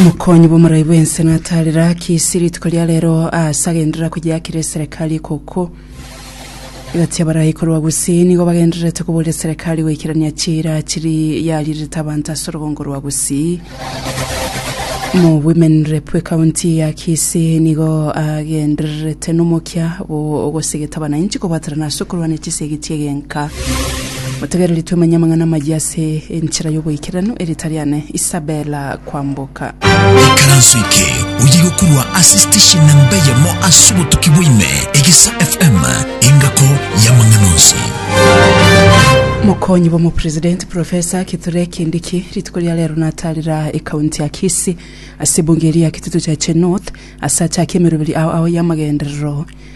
Mokonyi bw'omorai bw'ense natarera ki isi rituko ria rero aase agenderera koyeakera eserekari ekoko. Egati y'abarai korwa Gusii nigo bagendererete koboria eserekari goikerania chiira chiri yarirete abanto ase orogongo rwa Gusii. Mo women rep w'ekaunti ya Kisii nigo agendererete nomokia bwo ogosigeta abanainchi kobwaterana ase okorwania chisegi chi'egenka. Motegereri twemanye amang'ana amayia ase enchera y'oboikeranu e Ritariane Isabella kwamboka. Ikaranso eke oye gokorwa ase station namba eyemo ase obotuki bwaime, Egesa FM, engako y'amang'ana onsi. Mokonyi bw'omopresidenti Professor Kithure Kindiki rituko ria rero natarera ekaunti ya Kisii ase ebunge eria ya Kitutu Cheche North ase achake emeroberi ao ao y'amagenderero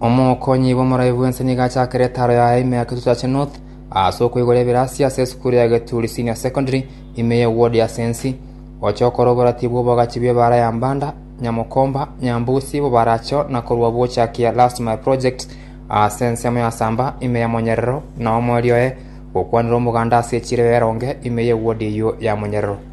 Omokonyi bw'omoraia bw'ense nigo achakire etaro yaye ime ya Kitutu Church North aase okoigora ebirasi ase esukuru ya Geturi Senior Secondary ime ye ward ya Sensi, gocha okora oboratibu bw'obogachi bw'ebaara ya Mbanda, Nyamokomba, Nyambusi, Bobaracho na korwa gochakia Last Mile Project ase ensemo ya Samba ime ya Monyerero na omoerio oye gokwanera omoganda ase echiro ya Eronge ime ye ward eyio ya Monyerero.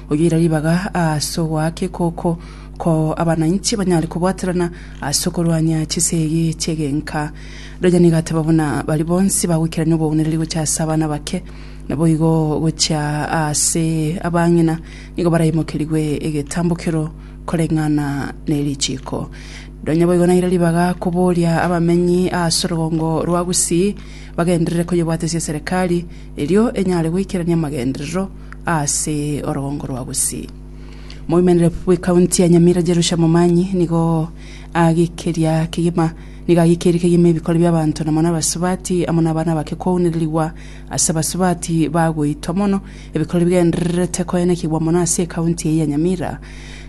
Oyoira ribaga aase ogoaka ekoko, ko abananchi banyare kobwaterana ase okorwania chisegi chi'egenka. Rirorio nigo ateba buna baria bonsi bagoikerania obogwenereri gochia ase abana abake, naboigo gochia aase abang'ina nigo baraimokerigwe egetambokero koreng'ana ne richiiko. Nonya boigo naira ribaga koboria abamenyi aase orogongo rwa Gusii bagenderere koyebwatesia eserekari erio enyare goikerania amagenderero ase orogongo rwa bosii. Moimerere bw'Ekaunti ya Nyamira Jerusha Momanyi nigo agekeria kegima nigo agekeirie kegima ebikori bi'abanto na mono abasubati amo n'abana bake kwaunererigwa ase abasubati bagoitwa mono ebikori bigendererete koenekigwa mono ase Ekaunti eye ya Nyamira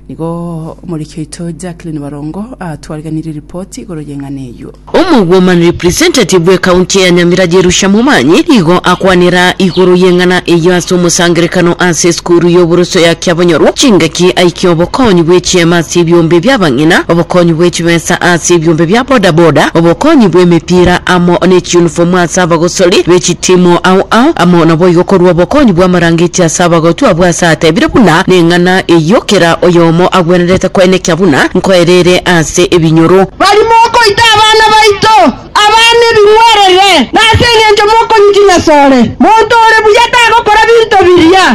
Nigo omoriki oito Jacqueline Barongo atwariganirie ripoti igoro y'eng'ana eyio. Omogwoman representative bwe county ya Nyamira Jerusha Momanyi nigo akwanera igoro y'eng'ana eyio ase omosangerekano ase esukuru y'oboroso ya Kiabonyorwa chingaki aikia obokonyi bwe chiema ase ebiombe bia abang'ina, obokonyi bwe chibesa ase ebiombe bia boda boda, obokonyi bwe emepira amo ne chiunifomu ase abagosori be chitimu ao ao amo naboigo korwa obokonyi bwa amarangeti ase abagotwa abwo ase atebire buna neng'ana na eyio kera oyomo agwenerete koenekia buna nkoereire ase ebinyoro. Bari mokoita abana baito abana ebing'werere, na ase engencho mokonyichinya sore. Monto ore buya tagokora binto biria,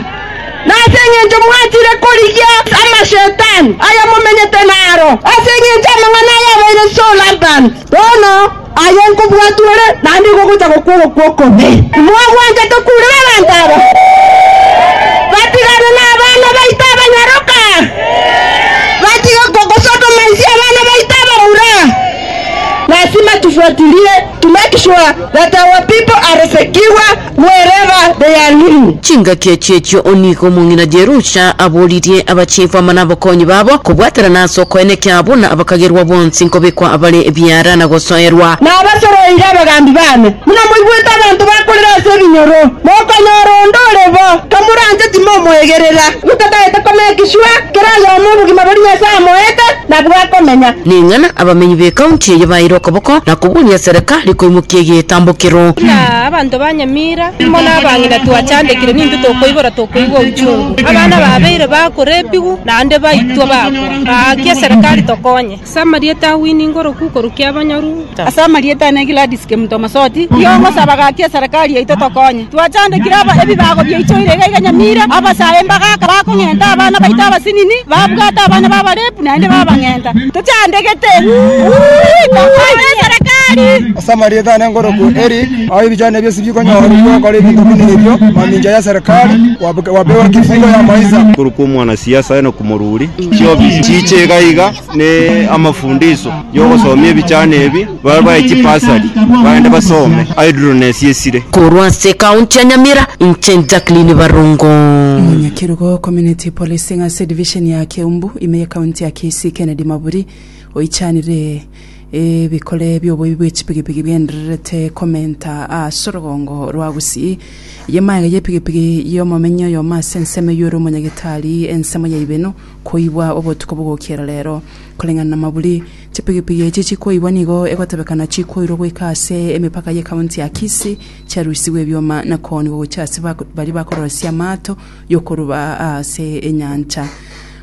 na ase engencho mwachire korigia amashetani aya momenyete naro, ase engencho amang'ana aya abeire sore abana. Bono aye nkobwatwa ore, naende igo ogocha gokwa ogokwa okobee. Timwagwenta tokuurera abanto aba batiganwe nabana baito abanyaroka, batige kogosotoma inse abana baito abamura. Lasima tufuatilie to make sure that our people are secure. Wherever they are living. Chingaki echi echio onigo omong'ina Jerusha aboririe abachifu amo nabakonyi babo, kobwaterana ase okoyene kia buna abakagerwa bonsi nkobekwa abare ebiara na gosoerwa. Nabasoroire abagambi baane, buna moigwete abanto bakorera ase ebinyoro, mokonyora onde ore bo, kamoranche timomoegerera. Gotataete komea egeswa, kera oyomo obogima boria Nyasae amoete nabwo akomenya. Ning'ana abamenyi b'ecounty eye baeire okoboko na kobunia serikali koimokia egetambo kero. Abanto ba nyamira, imo nabang'ina twachandekire, nintwe tokoibora tokoigwa ochungu. Abana babeire bakorepigwa, naende baitwa bakwa. Gaki eserekari tokonye. Ase amarieta a Winnie ngoroku korukia abanyoru. Ase amarieta ane Gladys Kemuto Masoti, riogosaba gaki eserekari yaito tokonye. Twachandekire ebibago biaichoire iga iga nyamira, abasae mbagaka bakong'enta abana baito abasinini, babwate abana babarepu naende babang'enta. Tochandegete gokorwa eserekari. Ase amarieta ane nkoroku Eric, aho ebichano ebio isi bikonyorwa gokora ebinto buna ebio, mamincha y'eserekari, gwapewa kifungo ya maisa. Korokwa omwanasiasa na komoruri chiofisi chiche iga iga ne amafundiso yogosomia ebichano ebi. Barwae chibasari bagende basome aidurunesi esire. Korwa ase ekaunti ya Nyamira, inche Jacqueline Barongo. Omonyakerugo o Community Policing ase edivisheni ya Keumbu ime y'ekaunti ya Kisii Kennedy Maburi oichanire ebikore bi'oboibi bw'echipigipigi bigendererete komenta ase orogongo rwa Gusii. Eye magega y'epigipigi y'omomenya oyomo ase ensemo eyio ore omonyagitari ensemo ya Ibeno koibwa obotuko bogokiera rero. Koreng'ana na Maburi, Chipigipigi echi chikoibwa nigo egotebekana chikoirwa goika ase emepaka ye county ya Kisii, chiarusigwe ebioma na koonigwa gochia ase baria bakorosia amaato y'okoruba ase enyancha.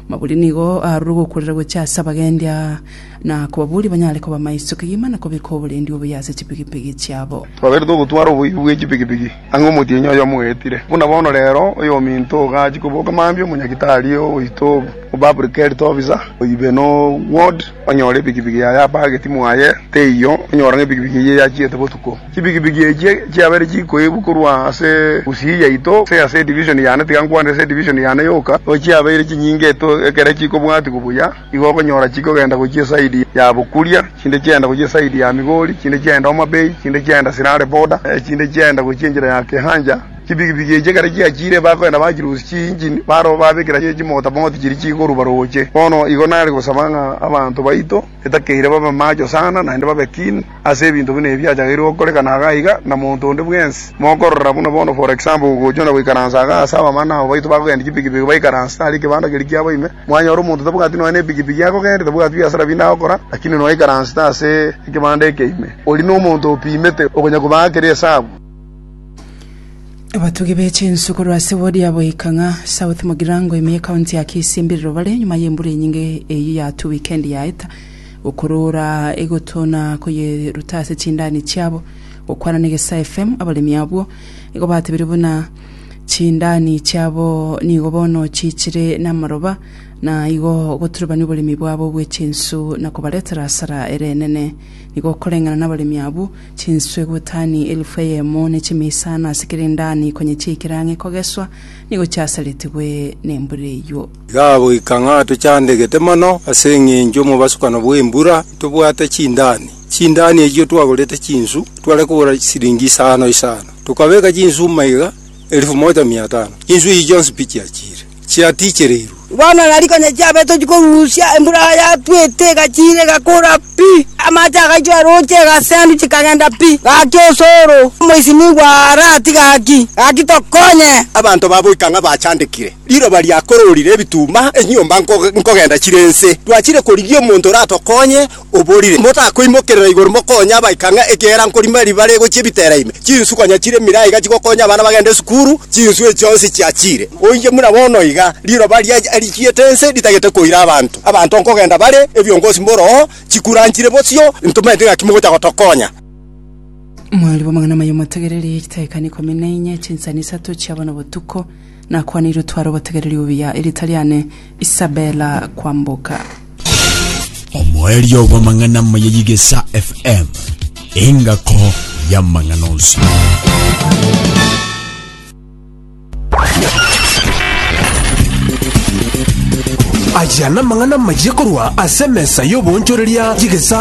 Maburi nigo arure gokurera gochia ase abagendia na kobaboria banyare koba maiso kegima na kobeka oborendi obuya ase chipigipigi chiabo. Twabeire togotwara oboibi bwe chipigipigi Ang'e omotienyi oye omoetire, buna bono reero oyominto iga achia koboka mambia omonyagitari oito obaPublic Health Officer oibe no ward onyore epikipiki yaye apageti mwaye teiyo onyora ng'a epikipiki eyio eyachiete botuko. Chipikipiki echio chiabere chikoibwa korwa ase Gusii yaito gose ase edivision yane tiga nkwanire ase edivision yane yoka, no chiabeire chinyinge ekero chikobwatwa buya. Nigo okonyora chikogenda gochia esaidi ya bokuria, chinde chiagenda gochia esaidi ya Migori, chinde chiagenda Homa Bay, chinde chiagenda Sirare Border, chinde chiagenda gochia enchera ya Kehanja. Chipigipigi echi ekero chiachiire bakogenda bachirusia chiinjini, barabwo babekera chimotapoti chiria chikorua rooche. Bono igo nare gosaba ng'a abanto baito etakeire babe macho sana, naende babe keen. Ase ebinto buna ebi achagaire gokoreka na iga iga, na monto onde bwensi, mokorora buna bono for example gogochwa na goikaransa iga ase abamana abo baito bakogendia chipikipiki baikaranse tari ekebanda keria kiabo ime, mwanyora omonto tabwati nonya nepikipiki akogendia, tabwati biasara binde agokora, lakini nonya aikaransete ase ekebanda eke ime, oria nomonto opimete okonya kobaa kere esabu. Abatugi be chinsu korwa ase ward ya Boikang'a South Mugirango ime ye county ya Kisii mbiriro bare nyuma ye mbura enyinge eyio yatugwa weekend yaeta. Gokoroora egoto na koyeruta ase chindani chiabo, gokwana negesae fm abaremi abwo, nigo batebire buna chindani chiabo nigo bono chiichire namaroba, na igo goturubania oboremi bwabo bwe chinsu na kobaretera hasara ere enene. Nigo okoreng'ana nabaremi abwo, chinsu egutani elifu eyemo ne chime isano ase kera endani konye chiaikire ang'e kogeswa, nigo chiasaretigwe nembura eyio. Igagoika ng'a tochandegete mono ase engencho omobasukano bw'embura, ntobwate chindani. Chindani echio twagorete chinsu, tware kogora siringi isano isano. Tokabeka chinsu maiga elifu moja mia tano. Chinsu echi chionsi pi chiachiire? Chiatichereirwe. Bono nari konya chiabe tochia korusia, embura yatwete egachiira egakora pi, amache agaitwa eroche egasendu chikagenda pi. Gaki osoro, omoisinigwa aaratiga gaki, gaki tokonye. Abanto baboika ng'a bachandekire, Riroba riakororire ebituma, enyomba nkogenda chire ense. Twachire korigia omonto oratokonye, oborire, Motakoimokerera igoro mokonye abaika ng'a ekiagera nkorima riba rigochia ebitera ime. Chinsu konya chire mira iga chigokonya abana bagende esukuru, chinsu echi chionsi chiachire. Oinche buna bono iga, riroba riachiete ense ritagete koira abanto. Abanto nkogenda bare, ebiongosi mboroo, chikura nchire bosio, ntomaeti ng'aki mogocha gotokonya. Mwariboamang'ana amaya omotegereri, chidaeka ikomi na inye, chinsani isato chiabana obotuko. Nakwanirwe tware obotegereri obuya, erita riane Isabella Kwamboka. Omoerio bw'amang'ana amaya y'Igesa FM, engako y'amang'ana onsi. Aya namang'ana amaya korwa ase emesa y'oboonchoreria y'Igesa